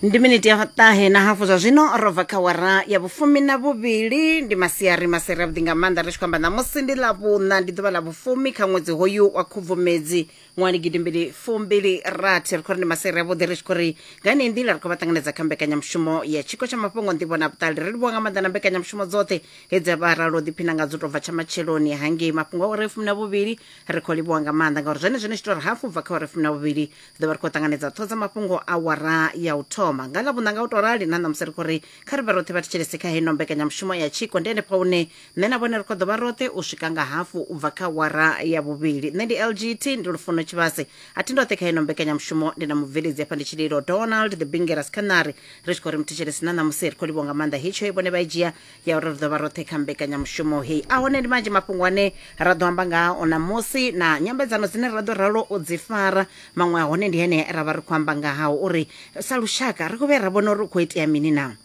ndi miniti ya ṱahe na hafu zwa zwino ro bva kha wara ya vhufumi na vhuvhili ndi masiari maseri avhuḓi nga maanḓa ri tshi khou amba ṋamusi ndi ḽa vhuṋa ndi ḓuvha ḽa vhufumi kha ṅwedzi hoyu wa khubvumedzi ṅwali gidimbili fumbili rathi ri khou ri ndi maseri avhuḓi ri tshi khou ri nga yeneyi nḓila ri khou vha ṱanganedza kha mbekanyamushumo ya tshiko tsha mafhungo nḓivho na vhuṱali ri livhuwa nga maanḓa na mbekanyamushumo dzoṱhe hedzi a vha ralo ḓiphina nga dzo tou bva tsha matsheloni hangei mafhungo a uri fumi na vhuvhili ri khou livhuwa nga maanḓa ngauri zwone zwine tshi tou ri hafu bva kha uri fumi na vhuvhili ḓo vha ri khou ṱanganedza ṱho dza mafhungo a wara ya u thoma nga ḽa vhunanga u tou rali na ṋamusi ri khou ri kha ri vhe roṱhe vha thetshelese kha heno mbekanyamushumo ya tshiko ndi henefha hune nṋe na vhone ri khou ḓo vha roṱhe u swika nga hafu u bva kha wara ya vhuvhili nṋe ndi lgt ndi lufuno tshivhase a thi ndoṱhe kha heno mbekanyamushumo ndi na mubveledzi hafha ndi tshililo donald the bingeras khanari ri tshi khou ri muthetshelesi na ṋamusi ri khou livhwa nga maanḓa hetsho i vhone vha i dzhia ya uri ri ḓo vha roṱhe kha mbekanyamushumo heyi a hone ndi manzhi mafhungo ane ra ḓo amba ngao ṋamusi na nyambedzano dzine ra ḓo ralo u dzi fara maṅwe a hone ndi hene ra vha ri khou amba nga hao uri sa lushaka ri khou vhuya ra vhona uri u khou itea mini na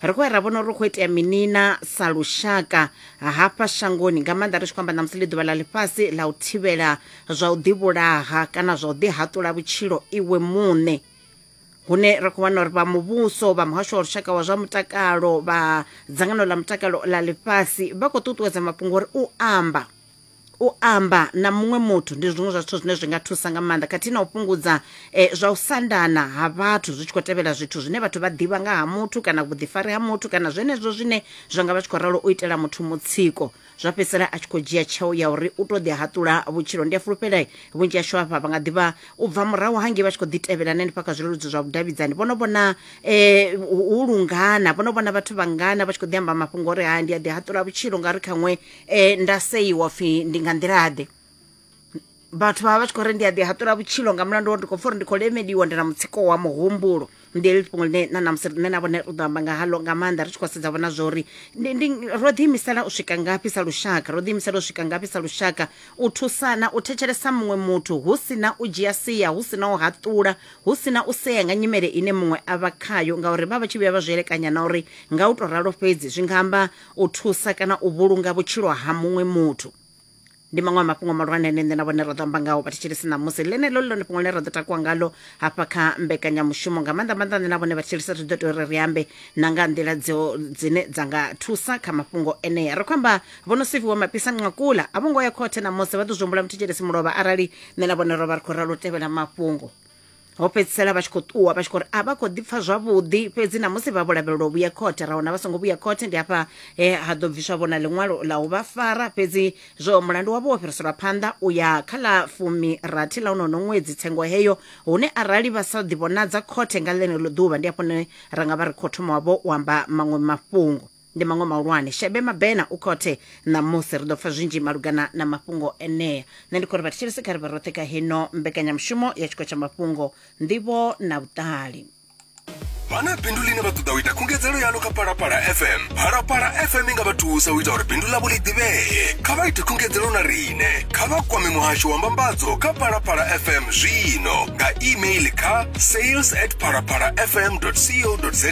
ri khou ya ra vhona uri ri khou itea mini na sa lushaka hafha shangoni nga maanḓa ri tshi khou amba ṋamusi ḽi ḓuvha ḽa ḽifhasi ḽa u thivhela zwa u ḓivhulaha kana zwa u ḓihaṱula vhutshilo iwe muṋe hune ra khou wana uri vha muvhuso vha muhasho wa lushaka wa zwa mutakalo vha dzangano ḽa mutakalo ḽa ḽifhasi vha khou ṱuṱuwedza mafhungo uri u amba u amba na muṅwe muthu ndi zwiṅwe zwa zwithu zwine zwi nga thusa nga maanḓa khathihi na u fhungudza eh, zwa u sandana ha vhathu zwi tshi khou tevhela zwithu zwine vhathu vha ḓivha nga ha muthu kana vhuḓifari ha muthu kana zwenezwo zwine zwa nga vha tshi khou ralo u itela muthu mutsiko zwa fhedzisela a tshi khou dzhia tsheo ya uri u tou ḓi haṱula vhutshilo ndi a fulufhela vhunzhi hashu hafha vha nga ḓivha u bva murahu hangei vha tshi khou ḓi tevhela na hanefha kha zwileludzi zwa vhudavhidzani vho no vhona um hu lungana vho no vhona vhathu vhangana vha tshi khou ḓi amba mafhungo uri ha ndi a ḓi haṱula vhutshilo ngauri khaṅwe um nda seiwa pfhi ndi nga nḓilaḓe vhathu vha vha vha tshi khou ri ndi a ḓi haṱula vhutshilo nga mulandu wa ndi khou pfa uri ndi khou lemeliwa ndi na mutsiko wa muhumbulo ndi heḽi fhungo ḽine na namusi nṋe na vhone ri ḓo amba nga halo nga maanḓa ri tshi khou sedza vhona zwa uri ndi- ndi- ro ḓiimisela u swika ngafhi sa lushaka ro ḓiimisela u swika ngafhi sa lushaka u thusana u thetshelesa muṅwe muthu hu si na u dzhia sia hu si na u haṱula hu si na u sea nga nyimele ine muṅwe a vha khayo ngauri vha vha tshi vhuya vha zwi elekanya na uri nga u tou ralo fhedzi zwi nga amba u thusa kana u vhulunga vhutshilo ha muṅwe muthu ndi maṅwe a mafhungo mahulwane ane nṋe na vhone ra ḓo amba ngaho vhathetshelesi ṋamusi ḽeneḽo ḽi ḽone fhungo ḽine ra ḓo takuwa ngalo hafha kha mbekanyamushumo nga maanḓa maanḓa nṋe na vhone vhathetshelesi ri ḓo tea uri ri ambe na nga nḓila dzo dzine dza nga thusa kha mafhungo enea ri khou amba vho no siviwa mapisa nqakula a vho ngo ya khothe ṋamusi vha ḓo zwi humbula muthetshelesi mulovha arali nṋe na vhone ro vha ri khou ralo u tevhela mafhungo ho fhedzisela vha tshi khou ṱuwa vha tshi khou ri a vha khou ḓipfa zwavhuḓi fhedzi na musi vha vho lavhelelwa u vhuya khothe ra wana vha songo vhuya khothe ndi hafha he ha ḓo bviswa vhona ḽiṅwalo ḽa u vha fara fhedzi zwo mulandu wavho wo fhiriselwa phanḓa u ya kha ḽa fumi rathi ḽa unono ṅwedzi tsengo heyo hune arali vha sa ḓivhonadza khothe nga ḽeneḽo ḓuvha ndi hafho ne ra nga vha ri khou thoma wavho u amba maṅwe mafhungo ndi maṅwe mahulwane shebe mabena u khothe ṋamusi ri ḓo pfa zwinzhi malugana na mafhungo enea nṋe ndi khou ri vhathetshelesi kha ri vhe roṱhe kha heno mbekanyamushumo ya tshiko tsha mafhungo nḓivho na vhuṱali vha na bindu ḽine vha ṱoḓa u ita khungedzelo yaḽo kha palapala fm phalapala fm i nga vha thusa u ita uri bindu ḽavho ḽi ḓivhee kha vha ite khungedzelo na riṋe kha vha kwame muhasho wa mbambadzo kha palapala fm zwino nga email kha sales at palapala fm co za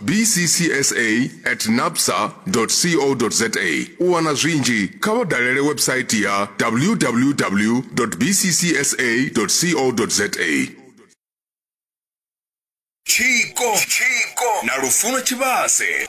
bccsa at napsa co za u wana zwinzhi kha vha dalele website ya www bccsa co za tshiko na lufuno tshivhase